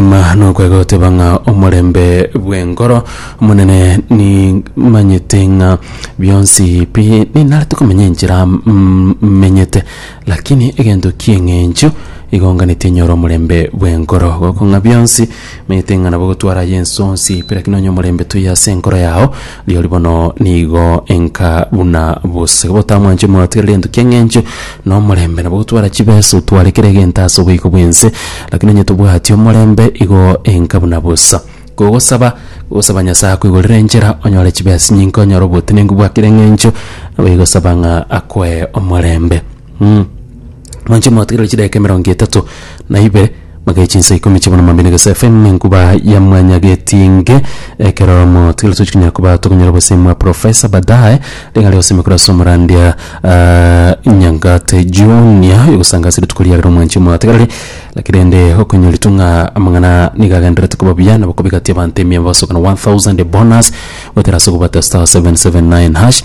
Okwegima nokwega goteba ng'a omorembe bw'enkoro omonene nimanyete ng'a bionsi pi ninarete komenya enchera mm, menyete lakini egento ki'eng'encho igonganeti enyore omorembe bw'enkoro gokong'a bionsi menyete ng'a nabo gotwara aye ensonsi pi lakini onye omorembe toiyo ase enkoro yao Rirorio bono nigo enka buna bosege botamwanchwe mwatigereri gento ki'eng'encho na omorembe, nabo gotwara chibesa otware kera egento ase oboiko bw'ense, lakini onye tobwati omorembe igo enka buna bosa. Kogosaba, gosaba Nyasae akoigorere enchera onyore chibesa nyinke onyore obotenenku bwa kera eng'encho, nabo igosaba ng'a akoe omorembe. Mh. Mwanche motigererwe chidaeka emerongo etato na ibere magae chinsa ikomi chia bono mambia na egesa FM enkuba ya mwanya getinge ekero motigererwe tochi konya koba tokonyora obosemi bwa profesa badaye rigari osemi korwa ase omorandia ah, Nyangate Junior yogosanga ase rituko riagera omwanche motigereri lakini rende okonyoritwe ng'a amang'ana niga agendererete koba buya nabo kobigatia abanto emiya bosokana 1000 bonus goetera ase okobwata star 779 hash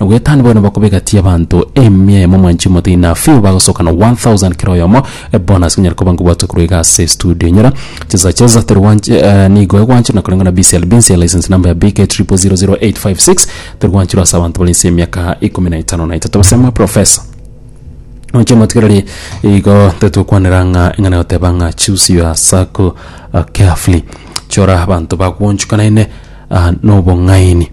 Nogoetani bono bakobegatia abanto emia emo mwanche omote enough few bagosoka na 1000 kera oyomo bonus konyara koba ngobwatwa korwa iga ase studio enyora chesa chesa teri gwanche eh, nigo egwanche na koreng'ana BCL Binsia license number ya BK 000856 teri gwanchirwa ase abanto bari nse emiaka ikomi na etano na etato basema professor Onche motigereri igo tetokwanera ng'a eng'ana yoteba ng'a choose your circle uh, carefully chora abanto bakuonchukana ine uh, nobong'aini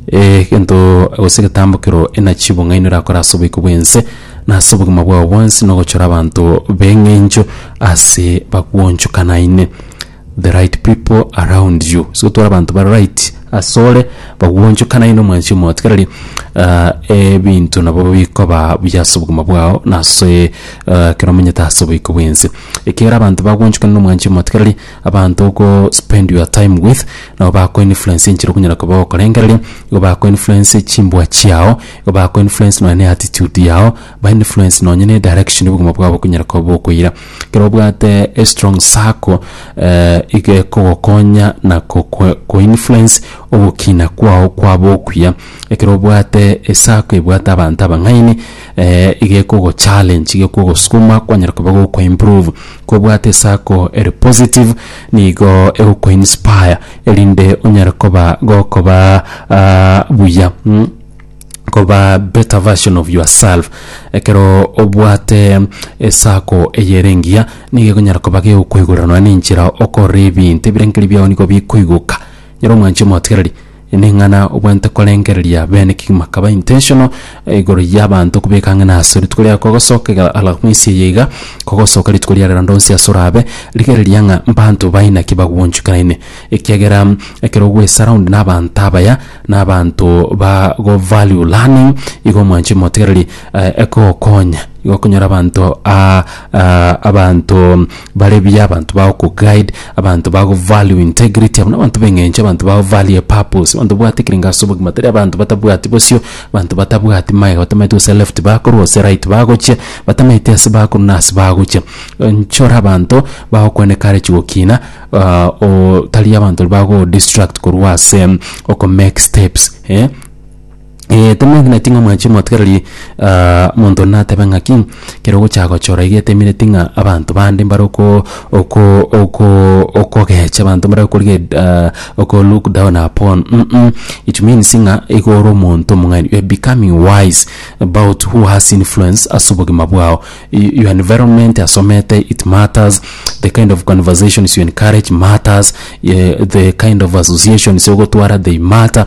egento gose egetambokero enachi bong'aini orakore ase oboiko bw'ense, na ase obogima bwao bwonsi, na ogochora abanto b'eng'encho ase bagwonchokanaine, the right people around you. Ase otware abanto bare right ase ore, bagwonchokanaine omwanchi omotigereri, ah ebinto nabo bikoba buya ase obogima bwao na ase ekero omanyete ase oboiko bw'ense. Ekiagera abanto bagwonchokanire na omwanchi omotigereri. Abanto ogo spend your time with nabo bako influence enchera okonyara koba ogokorengereria, igo bako influence chimbua chiao, igo bako influence nonya ne attitude yao, ba influence nonya ne direction obogima bwabo bokonyara koba bokoira. Ekero obwate a strong circle iga ekogokonya na kokwe ko influence ogokina kwao kwaba okuya. Ekero obwate esako ebwate abanto abang'aini. eh, gekogo challenge gekogosukuma kwanyara koba goko improve kobwate esako eri positive nigo egoko inspire erinde onyare koba gokoba uh, buya mm? koba better version of yourself ekero obwate esako eyerengia nigo egonyara koba gegokoigorera nonya nenchera okorora ebinto ebirengererio biao nigo bikoigoka nyero omwanchi omotigereri Eneng'ana obwente korengereria bene kegima kaba intentional igoro yabanto kobeka ang'e naso rituko riago kogosoka iga ala mwisi eye iga kogosoka rituko riare rende onsi ase orabe rigereria ng'a mbanto baye naki bagwonchukeraine ekiagera ekero ogwe surround na abanto abaya na abanto ba go value learning igo omwanche motegereri egokonya igo okonyora abanto. Ah, abanto bare buya, abanto bagokuguide, abanto bagovalue integrity, abwo nabanto b'eng'encho, abanto bagovalue purpose, abanto babwate ekerengo ase obogima, tari abanto batabwati bosio, abanto batabwati magega, batamaeti gose left bakorwa gose right bagochia, batamaeti ase bakorwa na ase bagochia. Nchore abanto bagokwana ekara chigokina ah, o tari abanto bago distract korwa ase okomake steps eh. Ee, temoegeneti ng'a mwanche omotwe rirorio ah, monto natebe ng'aki kero ogocha gochora iga etemereti ng'a abanto bande mbare oko oko oko okogecha abanto mbare okorigia ed ah oko look down upon um it means ng'a igo ore omonto omong'aini you are becoming wise about who has influence ase obogima bwao y your environment asomete it matters, the kind of conversations you encourage matters, ye the kind of associations ogotwara they matter.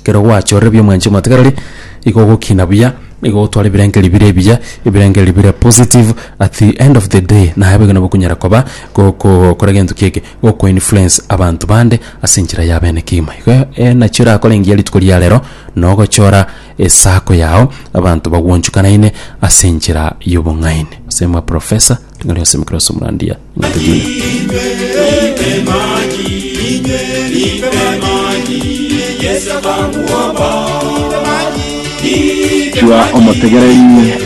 Ekero gwachorire buya omwanchi omwatagarari, igo ogokina buya, nigo ogotwara ebirengerio bire ebiya, ebirengerio bire positive, at the end of the day naye boigo nabo okonyara koba goko kora gento ki eke, goko influence abanto bande ase enchera ya bene kegima. Igo eh nachi orakore engiya rituko ria rero, na ogochora esako yao abanto bagwanchukanaine ase enchera y'obong'aini. Gose mwa professor, ring'ana ri'onsi mokere ase omorandia. Chiba omotegereri,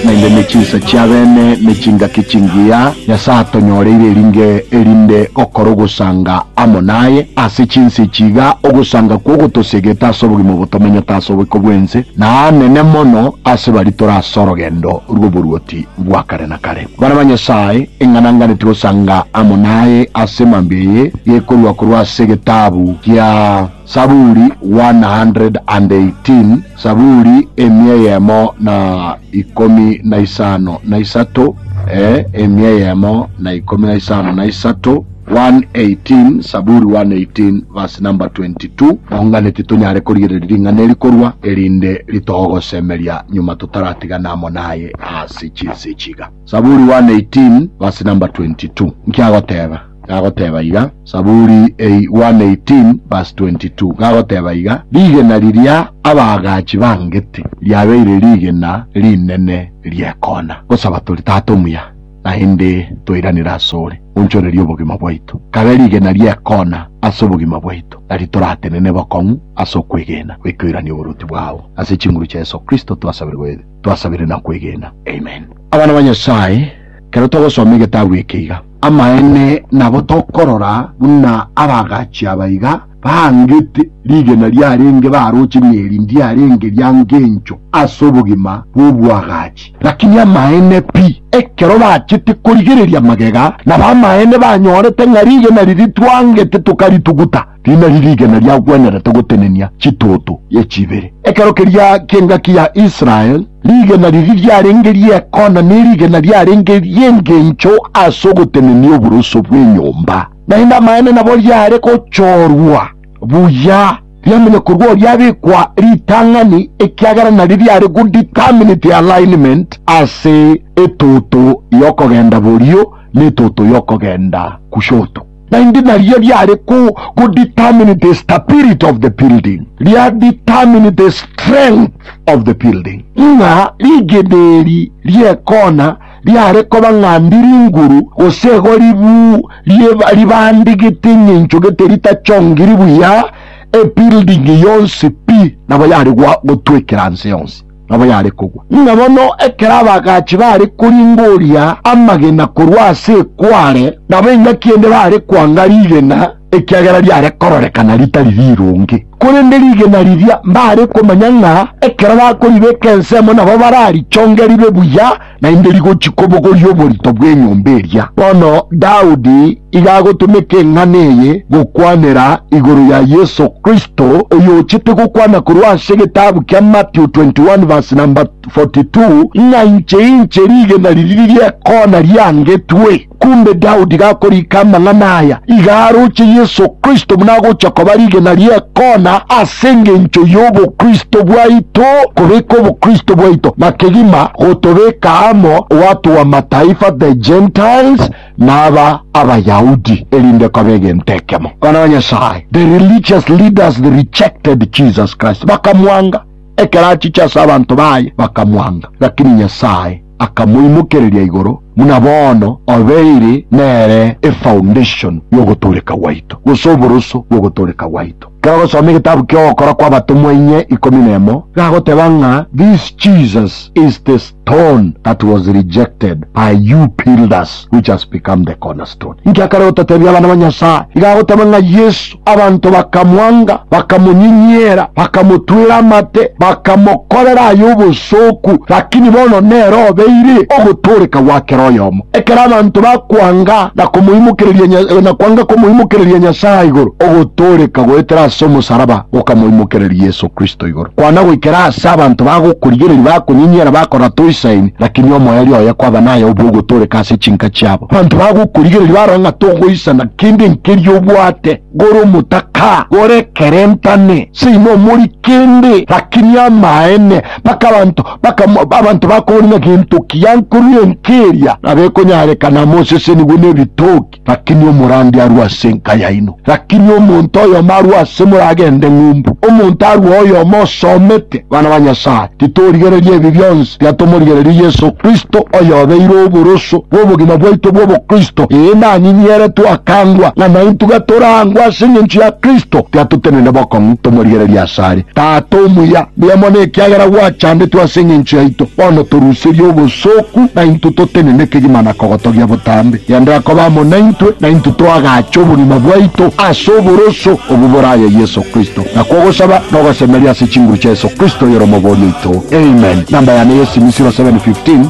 naende ne chinsa chi'abeene ne chingaki chingiya. Nyasae atonyoreire eringe erinde gokora ogosanga amo naye. Ase chinsa echi iga ogosanga kwo gotosegete ase obogima obotomanyete ase oboiko bw'ense, na aanene mono ase baria tore ase orogendo rw'oboruoti bwa kare na kare. Bana ba Nyasae, eng'ananganeti gosanga amo naye ase mambia eye, gekorua korwa ase egetabu gia Saburi 118, Saburi emia eyemo na ikomi na isano na isato, ee, emia eyemo na ikomi na isano na isato. 118 Saburi 118 verse number 22 Tong'anetie tonyare korigereria ring'ana eri korwa, erinde ritogosemeria nyuma totaratigana amo naye ase chinse echi iga. Saburi 118 verse number 22 Nki agoteba? Gagoteba iga, Saburi 118 verse 22 gagoteba iga, Rigena riria abaagachi bangete riabeire rigena rinene ri'ekoona. Gosaba tori, Tata omuya, naende toiranere asore, onchorerie obogima bwaito. Kabe rigena ri'ekoona ase obogima bwaito, na ritoratenene bokong'u ase okwegena, goikoirania oboruoti bwao. Ase chinguru chia Yeso Kristo twasaberwe, twasabire na kwegena. Amen. Abana ba Nyasae, kero togosoma egetabu eke iga, amaene nabo tokorora buna abagachi aba iga, Baangete rigena riarenge baroche nerindi arenge ria ngencho ase obogima bw'oboagachi. Lakini amaene pi, ekero bachete korigereria magega, nabo amaene banyorete ng'a rigena riria twangete tokarituguta, rinari rigena riagwenerete gotenenia chituotu y'echibere. Ekero keria ki'engaki ya Israel, rigena riria riarenge ri'ekona nerigena riarenge ri'engencho ase ogotenenia oboroso bw'enyomba. Naende amaene nabo riare gochorwa buya, riamenye korwa oria abekwa ritang'ani, ekiagera nari riare go determine the alignment ase etoto y'okogenda borio na etoto y'okogenda gushoto. Naende nario riare go go determine the stability of the building, ria determine the strength of the building, ng'a rigena eri ri'ekona riare koba ng'a ndi ringuru, gose igo ribu rieba ribande gete eng'encho gete ritachongiri buya ebuilding yonsi pi, nabo yare gwa gotwekera nse yonsi, nabo yare kogwa. Ng'a bono ekero abagachi bare koringoria amagena korwa ase ekware, nabo engaki ende bare kwanga rigena, ekiagera riare kororekana ritari rironge. Korende rigena riria mbare komanya ng'a ekero bakoribeka ensemo nabo bararichonge ribe buya, naende rigochia kobogoria oborito bw'enyomba eria. Bono Daudi iga agotomeka eng'ana eye gokwanera igoro ya Yeso Kristo, oyochete gokwana korwa ase egetabu kia Mathew 21 verse number 42, ng'a inche inche rigena riria riria ekona riangetwe. Korende Daudi gakoriika amang'ana aya, iga aroche Yeso Kristo buna agocha koba rigena ri'ekoona ase engencho y'obokristo bwaito, kobeka obokristo bwaito na kegima gotobeka amo watu b'Amataifa, the Gentiles, na aba Abayahudi, erinde kobe egento ekemo. Abana ba Nyasae, the religious leaders, they rejected Jesus Christ, bakamwanga, ekero achiche ase abanto baye bakamwanga, lakini Nyasae, akamoimokereria igoro, buna bono obeire nere efoundation y'ogotooreka gwaito, gose oboroso bw'ogotooreka gwaito. Ekero ogosoma egetabu ki'Ogokora kw'Abatomwa inye ikomi nemo, egagoteba ng'a this Jesus is the stone that was rejected by you builders which has become the cornerstone. Inki akare gototebia abana ba Nyasae? Iga agoteba ng'a Yesu. Abanto bakamwanga, bakamonyinyera, bakamotwera amate, bakamokorera aye obosooku, lakini bono nere obeire ogotooreka gwa kera oyomo. Ekero abanto bakwanga na komoimokereria Nya, na kwanga komoimokereria Nyasae igoro, ogotooreka goetera ase omosaraba gokamoimokereria Yeso Kristo igoro. Kwana goikera aase abanto bagokorigereria, bakonyinyera, bakora toisaini, lakini omoerio oye kwaba naye obe ogotooreka ase chinka chiabo. Abanto bagokorigereria barore ng'a togoisana. kende nkeri obwate gore omotaka gore kerentane seino omori kende rakini amaene mpaka abanto mpaka abanto bakobori ng'a gento ki yankorire enka eria nabo ekonyareka na mosesenigwe nebitoki rakini omorandi arue ase enka yaino rakini omonto oyomo arue ase moragende ng'umbu omonto arue oyomo osomete abana ba Nyasaye Titorigereria ebi bionsi biatomorigererie Yeso Kristo, oyobeire oboroso bw'obogima bwaito bw'obokristo, ee, nanyinyiere twakangwa ng'a naintwe gatorangwe ase engencho ya Kristo, tiatotenene bokong'u tomorigereria asare. Tata omuya, mbuya mono ekiagera gwachandetwe ase engencho yaito, bono toruserie obosooku naintwe totenene kegima na kogotogia botambe. Genderera koba amo naintwe, naintwe toagache obogima bwaito ase oboroso obwo boraya Yeso Kristo. Nakwo ogosaba na ogosemeria ase chinguru chia Yeso Kristo oyore Omobori oito. Amen. Namba yane y'esimi 0715.